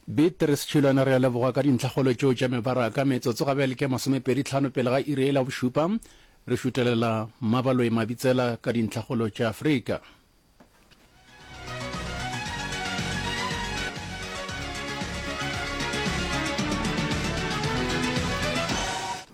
Beatrice Tšhilwana re a leboga ka dintlhakgolo tšeo tša mebaraka. Metsotso ga bjale ke masomepedi tlhano pele ga iri e la bošupa. Re šutelela Mmabaloi Mabitsela ka dintlhakgolo tša Afrika.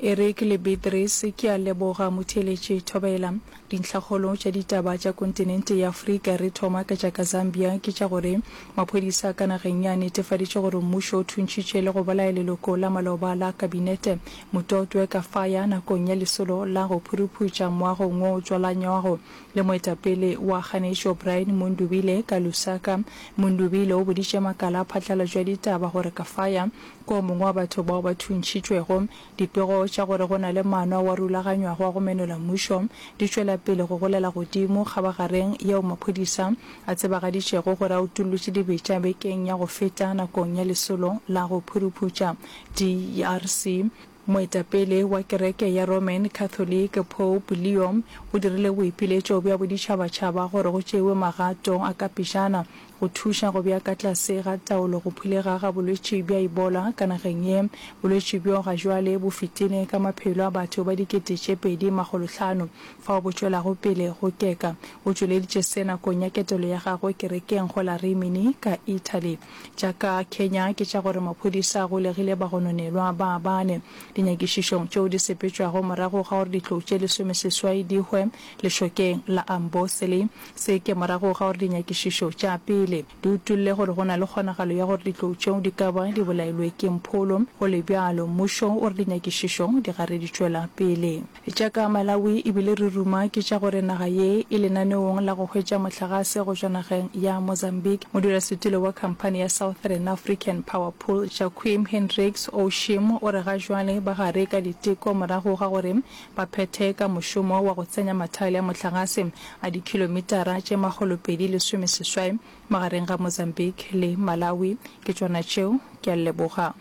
Eric le Beatrice, ke a leboga motheeletši Thobela. Dintlhakgolo tša ditaba tša kontinente ya Afrika, re thoma ka tša ka Zambia, ke tša gore maphodisa ka nageng ye a netefaditše gore mmušo o thuntšhitše le go bolaya leloko la maloba la kabinete, Mutotwe Kafaya, nakong ya lesolo la go phuruphuša moagong wo o tswalanywago le moetapele wa kganetšo Brian Mundubile ka Lusaka. Mundubile o boditše makala a phatlalatšo ya ditaba gore Kafaya ke o mongwe wa batho bao ba thuntšhitšwego. Dipego tša gore go na le maano ao a rulaganywago a go menola mmušo di tšwela pele go golela godimo kgabagareng yeo maphodisa a tsebagaditšego gore a utollotše dibetša bekeng ya go feta nakong ya lesolo la go phuruphuša DRC. Moetapele wa kereke ya Roman Catholic, Pope Leo o dirile boipiletšo bja boditšhabatšhaba gore go tšewe magato a ka pejana Go thuša go bja ka tlase ga taolo go phulega ga bolwetši bja Ebola ka nageng ye, bolwetši bjo ga jwale bo fitile ka maphelo a batho ba dikete tše pedi makgolo hlano fao bo tšwelago pele go keka. O tšweleditše se nakong ya ketelo ya gagwe kerekeng go la Rimini ka Italy. Tša ka Kenya ke tša gore maphodisa a golegile bagononelwa ba bane dinyakišišong tšeo di sepetšwago morago ga gore ditlou tše lesomeseswai di hwe lešokeng la Amboseli Se ke morago ga gore dinyakišišo tša pele di utolle gore go na le kgonagalo ya gore ditlou tšeo di ka ba di bolailwe ke mpholo. Go le bjalo, mmušo o re dinyakišišo di gare di tšwela pele. Tša ka Malawi e bile re ruma ke tša gore naga ye e lenaneong la go hwetša mohlagase go tšwa nageng ya Mozambique. Modulasetulo wa khamphani ya Southern African Power Pool, Jacquim Hendricks Oushim, o re ga jwale ba gare ka diteko morago ga gore ba phethe ka mošomo wa go tsenya mathaele a mohlagase a dikhilomitara tše makgolopedi lesome seswai magareng ga Mozambique le Malawi. Ke tšona tšeo. Ke a leboga.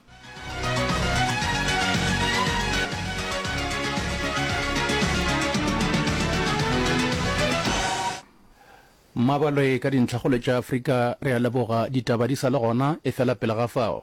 Mmabalwe ka dintlhakgolo tša Afrika. Re a leboga. Ditaba di sa le gona, efela pele ga fao.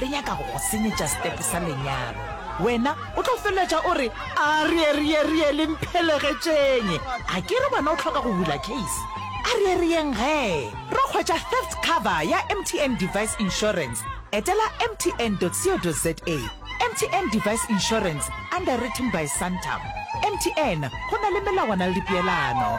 Le nyaka go go senyetša step sa lenyalo. Wena o tlo feleletša o re, Arieerierie, le mphelegetšeeng! A ke re wena o hloka go bula case? Arieerieng gee. Re hwetša theft cover ya MTN Device Insurance. Etela mtn.co.za. MTN Device Insurance, underwritten by Santam. MTN, go na le melawana le dipeelano.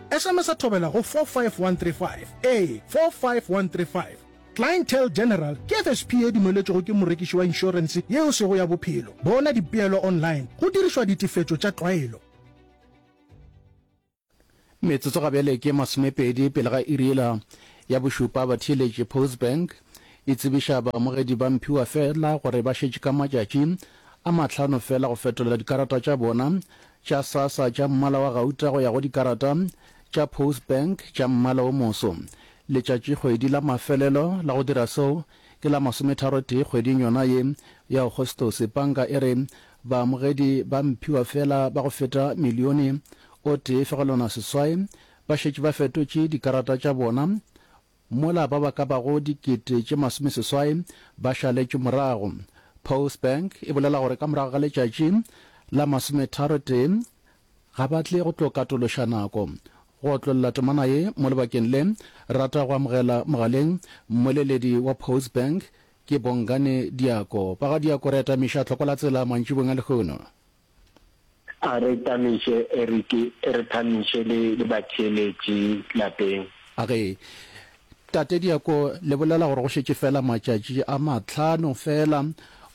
Esemesa thobela go 45135, ee, 45135. Clientele General ke FSP ye dumeletšwego ke morekiši wa inšorense yeo sego ya bophelo. Bona dipeelo online go dirišwa ditefetšo tša tlwaelo. Metsotso ga bjale ke masomepedi pele ga iri yela ya bošupa. Batheeletši, Postbank e tsebiša baamogedi ba mphiwa feela gore ba šetše ka matšatši a mahlano feela go fetolela dikarata tša bona tša Sasa tša mmala wa gauta go ya go dikarata tša Postbank tša mmala o moso. Letšatšikgwedi la mafelelo la go dira seo ke la masometharotee kgweding yona ye ya Agostose. Panka e re baamogedi ba mphiwa feela ba go feta milione o tee fegelwana seswai ba šetše ba fetotše dikarata tša bona mola ba ba ka bago dikete tše masomeseswai ba šaletšwe morago. Postbank e bolela gore ka morago ga letšatši la masometharotee ga ba tle go tlo katološa nako go otlolla temana ye mo lebakeng le. Rata go amogela mogaleng mmoleledi wa Postbank ke Bongani Diako. Ba ga Diako re atamiša Tlhokola Tsela mantšibong a lehono. A re tamiše Eric, e re tamiše le, le batheeletši lapeng. A re, Tate Diako, le bolela gore go šetše feela matšatši a mahlano feela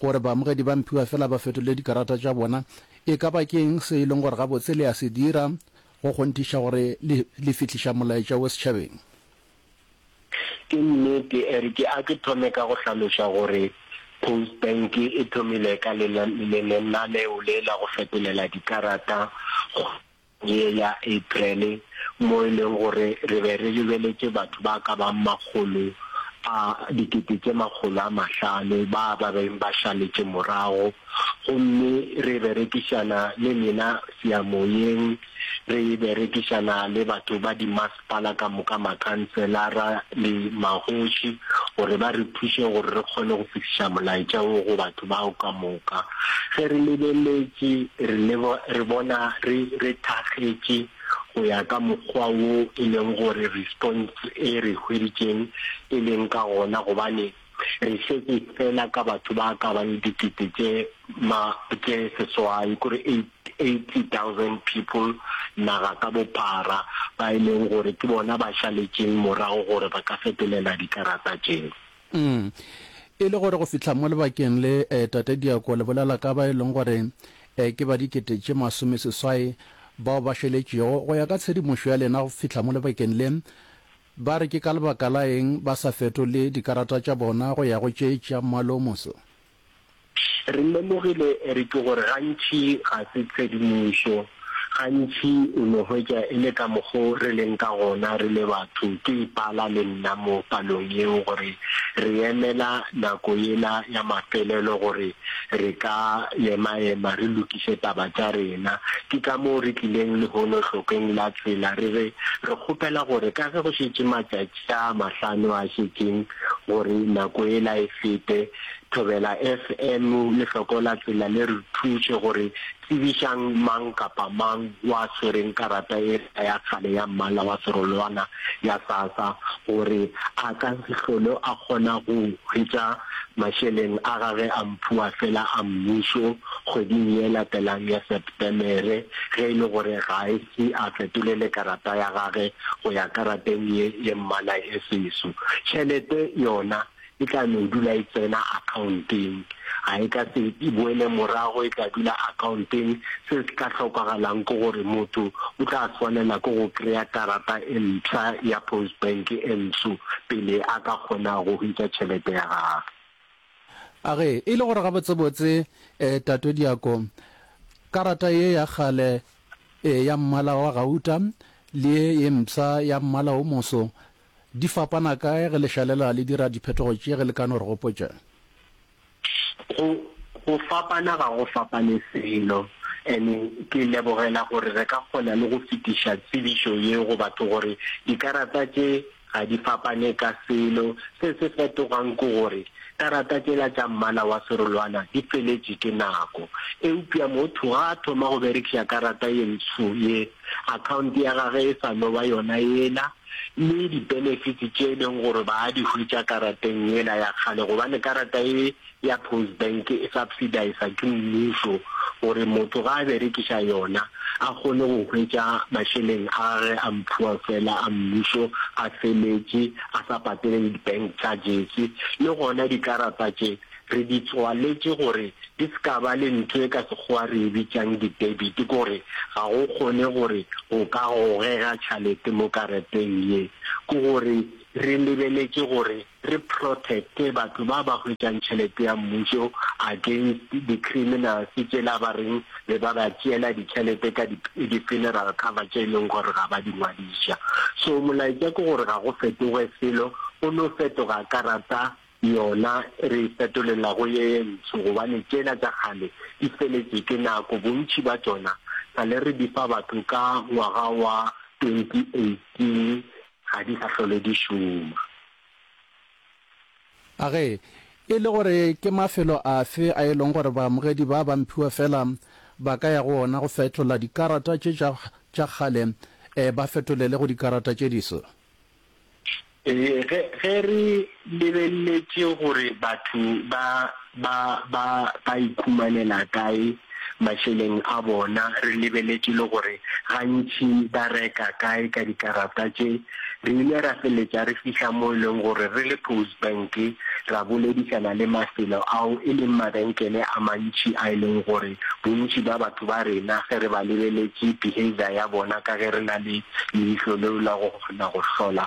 gore baamogedi ba mphiwa feela ba fetole dikarata tša bona. E ka ba ke eng se e leng gore gabotse le a se dira go kgonthiša gore le, le fihliša molaetša wo setšhabeng? Ke nnete, e re ke a ke thome ka go hlaloša gore Postbank e thomile ka lenaneo le la go fetolela dikarata kgweding ye ya April mo e leng gore re be re lebeletše batho ba ka bago makgolo a dikete tše makgolo a mahlano ba ba beng ba šaletše morago gomme re berekišana le lena seyamoyeng, re berekišana le batho ba di Bala ka moka makhanselara le magoši gore ba re thuše gore re kgone go fihliša molaetša wo go batho bao ka moka. Ge re lebeletše, re lebo, re bona re, re thakgetše go ya ka mokgwa wo e leng gore response e re hweditšeng e leng ka gona, gobane Re šetše feela ka batho ba ka bang dikete tše ma, tše seswai, kore eighty thousand people naga ka bophara, ba e leng gore ke bona ba šaletšeng morago gore ba ka fetelela dikarata tšeo. Umm. E le gore go fihla mo lebakeng le, eh, Tate Diako, le bolela ka ba e leng gore, eh, ke ba dikete tše masome seswai bao ba šaletšego. Go ya ka tshedimošo ya lena go fihla mo lebakeng le, Ba re ke ka lebaka la eng ba sa fetole dikarata tša bona go ya go tše tša Mmwalo o Moso? Re lemogile re ke gore gantši ga se tshedimošo. Gantši o no hwetša e le ka mokgo re leng ka gona re le batho, ke ipala le nna mo palong yeo gore re emela nako yela ya mafelelo gore Re ka emaema re lokiše taba tša rena. Ke ka moo re tlileng lehono hlokeng la tsela re re, Re kgopela gore ka ge go šetše matšatši a mahlano a šetšeng gore nako yela e fete, Thobela FM le Hloko la Tsela le re thuše gore tsebišang mang kapa mang wa swereng karata e Kgotla ya kgale ya Mmala wa Serolwana ya SASA gore a ka se hlolo a kgona go hwetša mašeleng a gage a mphuwa fela a mmušo kgweding ye latelang ya Sepetemere ge e le gore ga a ise a fetolele karata ya gage go ya karateng ye ye mmala e seso. Tšhelete yona e tla no dula e tsena akhaonteng, ga e ka se e boele morago, e tla dula akhaonteng. Se se tla hlokagalang ke gore motho o tla swanela ke go kry-a karata e mpsha ya Postbank e ntsho pele a ka kgona go hwetša tšhelete ya gagwe. A ge e le gore gabotsebotse Tate Diako, karata ye ya kgale ya mmala wa gauta le ye ye mpsha ya mmala o moso Di fapana kae ge le šalela le dira diphetogo tše ge le ka no re gopotša? Go, go fapana ga go fapane selo. Ene ke lebogela gore re ka kgona le go fetiša tsebišo ye go batho gore dikarata tše ga di fapane ka selo. Se se fetogang ke gore karata tšela tša mmala wa serolwana di feletše ke nako. Eupša motho ga a thoma go berekiša karata ye ntsho ye, akhaonte ya gage e sa no ba yona yela. le di-benefits tše e leng gore ba di hwetša karateng yela ya kgale, gobane karata ye ya Post Bank e subsidisa ke mmušo gore motho ga a berekiša yona a kgone go hwetša mašeleng a gage a mphuwa fela a mmušo a feletše a sa patele le di-bank charges le gona dikarata tše Re di tswaletše gore di se ka ba le ntho e ka Sekgowa re e bitšang di-debit, ke gore ga go kgone gore go ka gogega tšhalete mo karateng ye. Ke gore re lebeletše gore re protect-e batho ba ba hwetšang tšhelete ya mmušo against di-criminals tšela ba reng be ba ba tšeela ditšhelete ka di-funeral cover tše e leng gore ga ba di ngwadiša. So molaetša ke gore ga go fetoge selo, go no fetoga karata Yona re e fetolela go ye ye ntsho, gobane tšela tša kgale di feletše ke nako, bontši bja tšona sa le re di fa batho ka ngwaga wa 2018, ga di sa hlole di šoma. A Ge e le gore ke mafelo afe a e lego gore baamogedi ba ba mphiwa fela ba ka ya go ona go fetola dikarata tše tša kgale ba fetolele go dikarata tše diswa? Ee, ge, ge re lebeleletše gore batho ba, ba, ba, ba ikhumanela kae mašeleng a bona, re lebeleletše le gore gantši ba reka kae ka dikarata tše, re ile ra feletša re fihla mo e leng gore re le Postbank ra boledišana le mafelo ao e leng mabenkele a mantši a e leng gore bontši bja batho ba rena ge re ba lebeleletše behaviour ya bona ka ge re na le leihlo leo la go kgona go hlola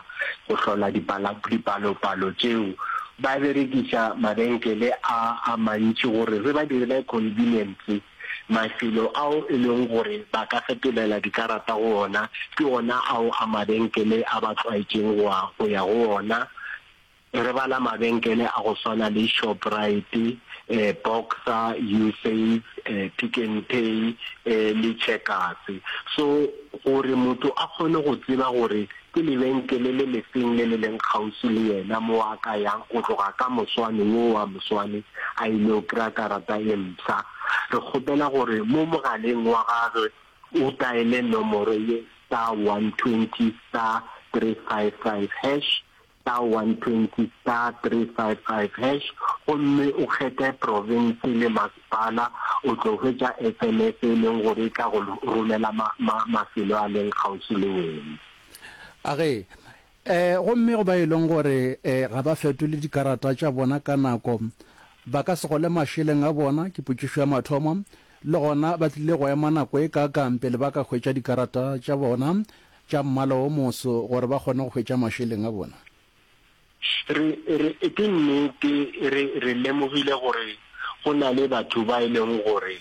go hlola dipala dipalopalo tšeo ba berekiša mabenkele a a mantši gore re ba direle convenience mafelo ao e leng gore ba ka fetolela dikarata go ona ke ona ao a mabenkele a ba tlwaetšeng go ya go ona Re bala mabenkele a go swana le Shoprite, Boxer, Usave, Pick n Pay le Checkers. So gore motho a kgone go tseba gore ke lebenkele le lefeng le le leng kgauswi le yena mo a ka yang o tloga ka moswane wo wa moswane a ile go kry-a karata e mpsha, re kgopela gore mo mogaleng wa gagwe o taele nomoro ye star 120 star 355 hash star 120 star 355# gomme o kgethe province le masepala, o tlo hwetša sms e leng gore e tla go romela ma, ma, mafelo a leng kgauswi le wena. A ge. Eh, gomme go ba e leng gore eh, ga ba fetole dikarata tša bona ka nako, ba ka se gole mašeleng a bona, ke potšišo ya mathomo, le gona ba tlile go ema nako e kaakang pele ba ka hwetša dikarata tša bona, tša mmala o moso gore ba kgone go hwetša mašeleng a bona? Re, re, ke nnete, re, re lemogile gore go na le batho ba e lego gore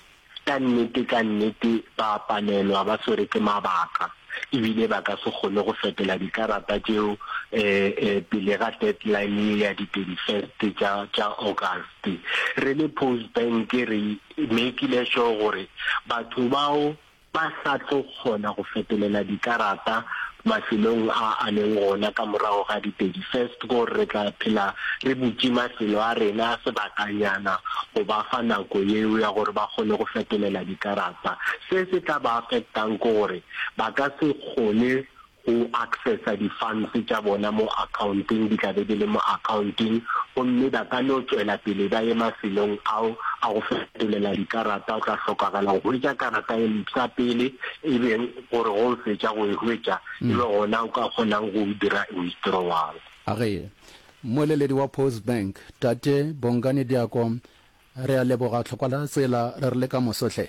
ka nnete, ka nnete ba a palelwa, ba swere ke mabaka, ebile ba ka se kgone go fetola dikarata tšeo e, e, pele ga deadline ye ya di 31st tša, tša August. Re le Post Bank re makile sure gore batho bao, Ba sa tlo kgona go fetolela dikarata mafelong a a leng gona ka morago ga di 31st gore re tla phela re butše mafelo a rena sebakanyana go ba fa nako yeo ya gore ba kgone go fetolela dikarata. Se se tla ba affectang ke gore ba ka se kgone go accessa di funds tša bona mo accounteng di tla be di le mo accounteng gomme ba ka no tšwela pele ba ye mafelong ao a go fetolela dikarata o tla hlokagala go hwetša karata e mpsha pele e be gore go o fetša go e hwetša e be gona o ka kgonang go dira withdrawal. A re moeleledi wa Post Bank Tate Bongani Diako re a leboga tlhokwa la tsela re re le ka moso hle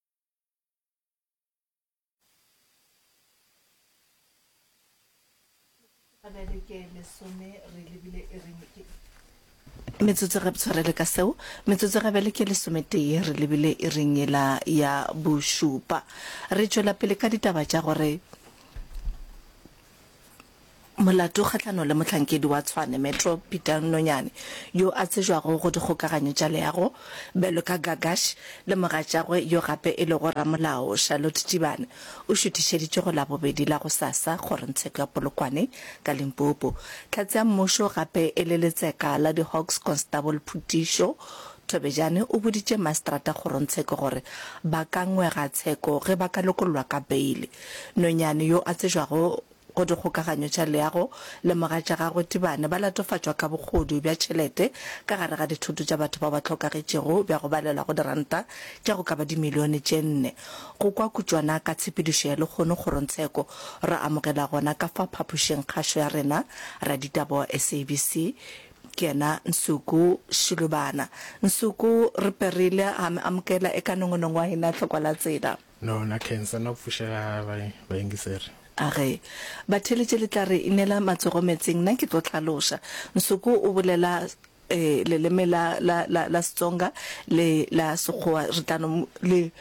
metsotso ge tshwarele ka seo metsotso ge bele ke lesometee re lebile e reng ela ya bošupa re tšwela pele ka ditaba tša gore Molato kgahlanong le mohlankedi wa Tshwane Metro Peter Nonyane yo a tsejwago go dikgokaganyo tša leago bjalo ka Gagash le mogatšagwe yo gape e lego ramolao Charlotte Tšibane o šuthišeditšwe go Labobedi la gosasa kgorotsheko ya Polokwane ka Limpopo. Tlhatse ya Mmušo gape e le letseka la di-Hawks Constable Phutišo Thobejane o boditše Maestrata kgorotsheko gore ba ka ngwega tsheko ge ba ka lokollwa ka beile Nonyane yo a tsejwago go dikgokaganyo tša leago le mogatša gagwe Tibane ba latofatšwa ka bogodu bja tšhelete ka gare ga dithoto tša batho bao ba hlokagetšego bja go balelwa go diranta tša go ka ba dimilione tše nne. Go kwa kutšwana ka tshepedišo ya lekgono kgorongtsheko ra amogela gona ka fa phapošing kgašo ya rena raditaba wa SABC ke yena Nsuku Shilubana. Nsuku re perile ga me amokela e ka nongonongo wa hina hlokwa la tsela. No, na cancer na pfušega ga ba bayengiseri. A re, Batheletše le tla re inela matsogo metsing, na ke tlo hlaloša. Nsuku o bolela eh, leleme la, la, la, la Setsonga le la Sekgowa, re tla no, le,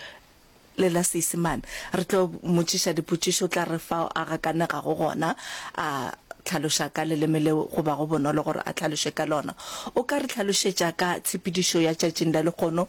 le la Seisemane. Re tlo motšiša dipotšišo, o tla re fao a gakanegago gona, a hlaloša ka leleme leo go bago bonolo gore a hlaloše ka lona. O ka re hlalošetša ka tshepedišo ya tšatšing la lekgono,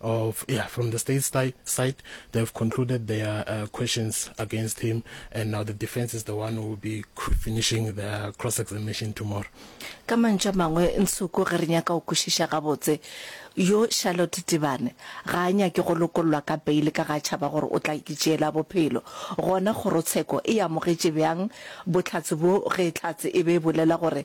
of yeah from the state side, side they have concluded their uh, questions against him and now the defense is the one who will be finishing their cross examination tomorrow ka mantša mangwe nsoko ge re nyaka go kwešiša gabotse yo charlotte tibane ga a nyake go lokollwa ka beile ka ga tšhaba gore o tla itšeela bophelo gona kgorotsheko e amogetše bjang botlhatse bo ge tlhatse e be e bolela gore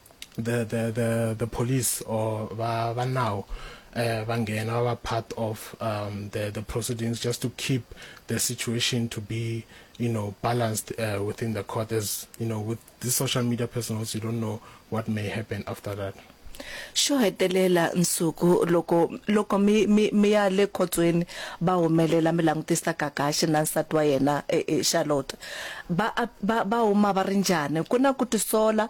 the the the the police or ba ba now uh, ba ngena ba ba part of um, the the proceedings just to keep the situation to be you know balanced uh, within the court as you know with the social media personals you don't know what may happen after that xo hetelela nsuku loko loko mi mi mi ya le khotsweni va humelela mi langutisa kakaxi na nsati wa yena e, e, charlotte va va va huma va ri njhani ku na ku tisola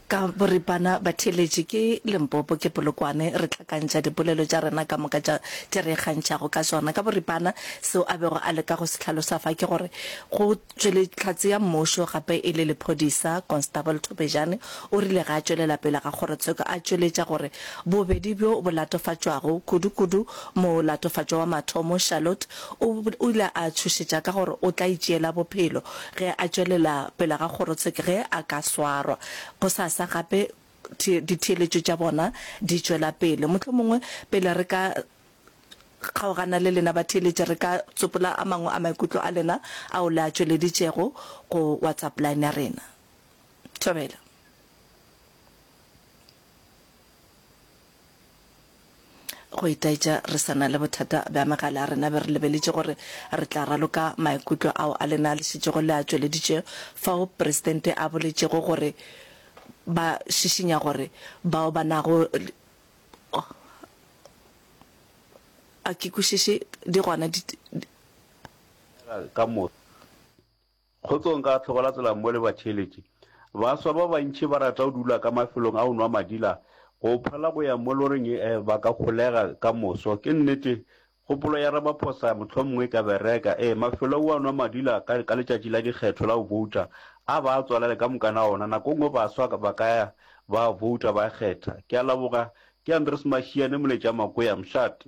Ka boripana, batheeletši ke Limpopo, ke Polokwane, re hlakantšha dipolelo tša rena ka moka tša tše re ikgantšhago ka tšona. Ka boripana, seo a bego a leka go se hlalosa fa ke gore go tšwele Hlatse ya Mmušo gape e le lephodisa, Constable Thobejane o rile ge a tšwelela pele ga kgorotsheko a tšweletša gore bobedi bjo bo latofatšwago, kudu-kudu molatofatšwa wa mathomo, Charlotte, O ile a tšhošetša ka gore o tla itšeela bophelo ge a tšwelela pele ga kgorotsheke ge a ka swarwa. Gosasa gape ditheeletšo tša bona di tšwela pele. Mohlomongwe pele re ka kgaogana le lena batheeletši, re ka tsopola a mangwe a maikutlo a lena ao le a tšweleditšego go WhatsApp line ya rena. Thobela. Go itaetša re sa na le bothata bja megala ya rena, be re lebeletše gore re tla raloka maikutlo ao a lena le šetšego le a tšweleditše fao Presidente a boletšego gore ba šišinya gore bao ba nago a ke kwešiše di gona di ka moka. Kgotsong ka hlokola tsela mmo le batheeletši. Baswa ba bantši ba rata go dula ka mafelong a go nwa madila, go phela go ya mo loring e ba ka holega ka moso. Ke nnete, kgopolo ya Ramaphosa mohlomongwe e ka bereka. Ee, mafelo ao a nwa madila ka, ka letšatši la dikgetho la go bouta, a ba a tswalele ka moka na ona. Nako e nngwe baswa ba ka ya ba a bouta, ba a kgetha. Ke a laboga. Ke Andries Mashiane, Moletša Makoya, Mshati.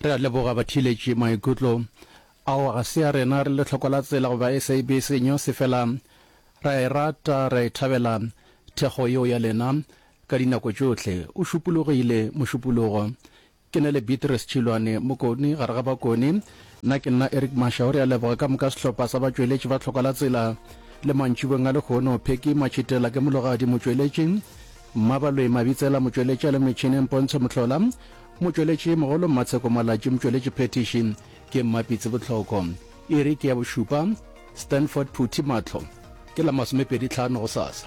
Re a leboga batheeletši. Maikutlo ao ga se a rena, re lehloko la tsela goba SAB senyo se fela. Re a e rata, re a e thabela thekgo yeo ya lena ka dinako tšohle. O šupologile, mošupologo. Ke na le Beatrice Tšhilwane, mokoni gare ga bakoni. Nna ke nna Eric Mashau. Re a leboga ka moka sehlopha sa batšweletši ba Tlhokwa la Tsela le mantšibeng a lehono, Phecky Matšhitela ke mologadi motšweletši, Mmabaloi Mabitsela, motšweletši a le metšhineng Pontsho Mohlola, motšweletši mogolo Mmatsheko Malatši, motšweletši phethiši ke Mmapitsi Botlhoko. Iri ke ya bošupa. Stanford Phuthi, Mahlo ke la masomepedi tlhano gosasa.